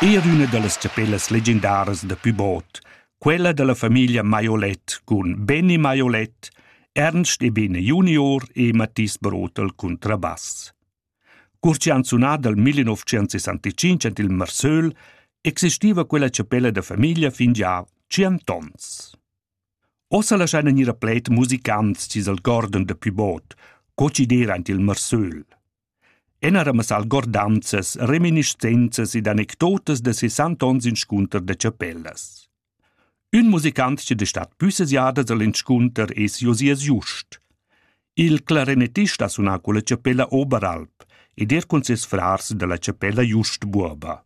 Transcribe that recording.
Eir üna da las chapellas legendaras da Pybot, quella da la famiglia Maiolet cun Benny Maiolet, Ernst Ebene junior e Mathis Brotel cuntrabass. Cur chi han sunà dal 1965 ant il Marsöl, existiva quella chapella da famiglia fin già tschient ons. Ossa laschaina gnir a pled musicants chi's algordan da Pybot, co chi d'eira ant il Marsöl. Enaremas algordanzas, reminiscenzas ed anecdotas da sesant onns inscunter da chapellas. Ün musicant chi da stat püssas jadas al inscunter es Josias Just. Il clarinettist ha sunà culla chapella Oberalp ed er cun ses frars da la chapella Just Buoba.